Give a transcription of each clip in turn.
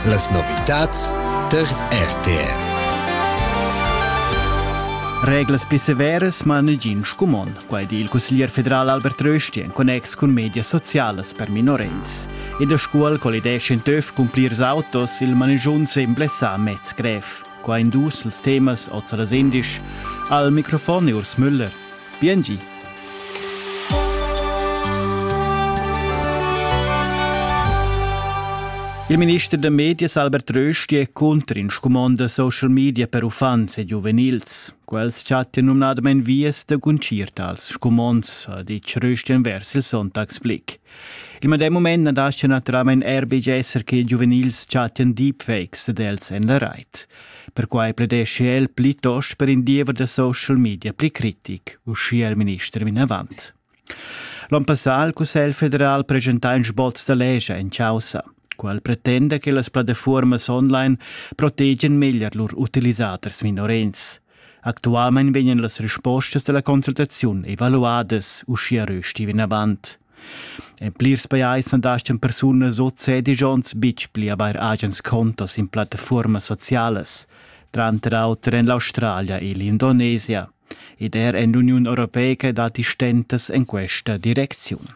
Las novitads tar RTR. Reglas pli severas ma negin scumon, quai di il cusglier federal Albert Rösti en connex cun medias socialas per minorens. In da scuol collidesce in töf cun plirs autos il manigiun semble sa mez grev. Qua in dus els temas oz a las indisch. Al microfon Urs Müller. Biengi! Il minister da medias Albert Rösti è cunter in scumond da social media per uffants e giuvenils. Quels chattan numnadamain vias da guncir tals scumonds, ha ditg Rösti envers il Sonntagsblick. Il medem moment na dascha naturalmain er betg esser che giuvenils chattan deepfakes dad els en la rait. Perquai pledeschi el plitost per in diever da social media pli critic, uschia il minister vinavant. L'on passà il Cussegl federal presentà in sboz da legia en causa. Quel pretenda che las plattafuormas online protegien meglier lur utilisaders minorens. Actualmein vegnan las respostas dalla consultaziun evaluadas, uschia rösti vinavant. En plirs pajais andastan persunas o cedigions bitg pli avair agens contos in plattafuormas socialas, tranter auter en l'Australia e l'Indonesia, ed er en l'Uniun Europeica datti stentas en questa direcziun.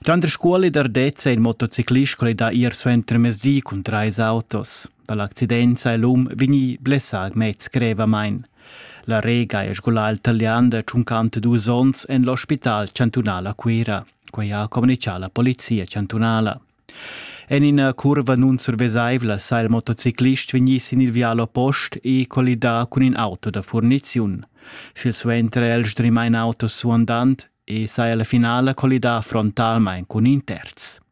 Tranter scuola ed ardezza in motociclist quel da ir suenter mezdi cun trais autos. Dall'accidenza è l'um vegnì blessà mez grevamain. La Rega è scolà al talian da tschuncant dus onns en l'ospital chantunal a Cuira. Quai ha communitgà la polizia chantunala. En ina curva nunsurvesaivla sa il motociclist vegnì sin il vial oppost e collidà cun in auto da furniziun. Silsuenter è el sdrimà in auto suandant e saja la finala collidà frontalmain cun in terz.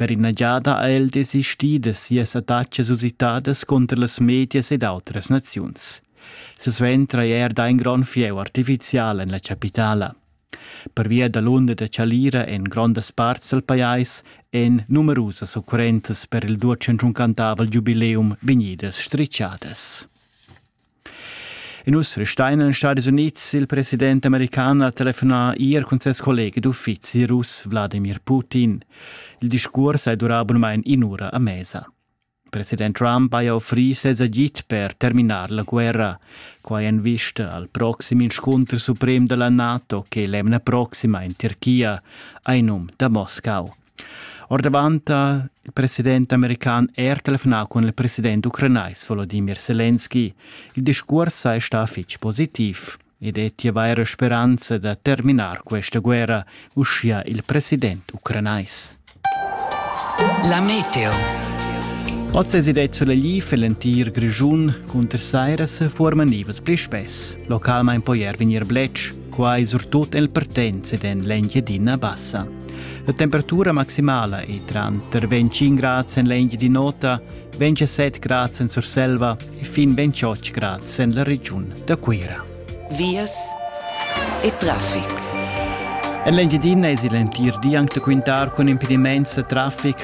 Per ina giada ha el desistì da sias attacas usitadas cunter las medias ed autras naziuns. Silsuenter hai er dà in grond fieu artifizial en la chapitala. Pervia da l'unda da chalira en grondas parts dal pajais èn numerusas occurrenzas per il duatschenschuncantavel giubileum vegnidas stritgadas. E nus restein en Stadis Unids. Il president american ha telefonà ier cun ses collega d'uffizi russ Wladimir Putin. Il discurs è durà abunamain in'ura a mesa. President Trump haja offrì ses agid per terminar la guerra. Quai en vista al proxim inscunter suprem da la NATO che l'emna proxima in Tirchia, ai num da Moscau. Ordavant ha il president american er telefonà cun il president ucranais Volodimir Selenski. Il discurs è stà fitg positiv ed è vaira speranza da terminar questa guerra, uschia il president ucranais. La meteo. Oz es id Solegliv e l'entir Grischun cunter sairas forma nivas pli spess, localmain poi er vegnir bletsch, quai surtut el Partenz ed en l'Engiadina Bassa. La temperatura maximala ei tranter 25 grads en l'engia di nota, 27 grads en Surselva e fin 28 grads en la regiun da Cuira. Vias e traffic. En l'Engiadina es il entir di anc da quintar cun impediments e traffic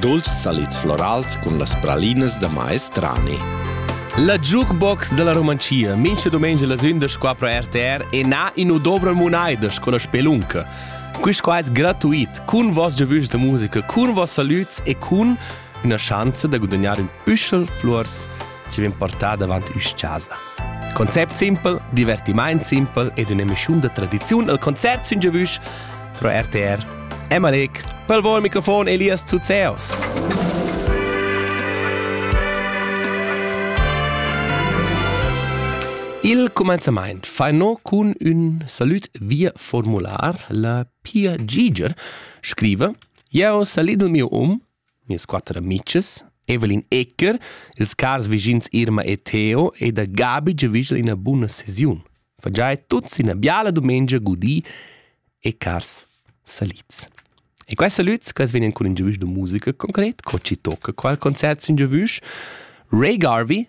dolces salids florals cun las pralinas da maestrani. La jukebox della Romancia mincha domenica las 11 pro RTR e na in u dobra munaidas con la spelunca. Quist qua es gratuit, cun vos giavüs da musica, cun vos salüts e cun üna schanza da gudagnare ün püschel flors chi vegn portà davant üs-chasa. Concept simpel, divertimaint simpel ed ün'emischiun da tradiziun al concert sün giavüsch pro RTR. Emalec, pel vol microfon Elias Zuzeos. Il comenzamaint fa no cun ün salüt via formular. La Pia Giger scriva: Jeo salid il mio um Mias quatter amitgs, Evelyn Ecker, ils cars vischins Irma e Theo e da Gabi giavüschel ina buna sesiun. Fa già tuts ina biala dumengia gudì e cars salits. E questi salüts quels vegnan cun ün giavüsch da musica concret, co ci tocca qual concert sün giavüsch. Ray Garvey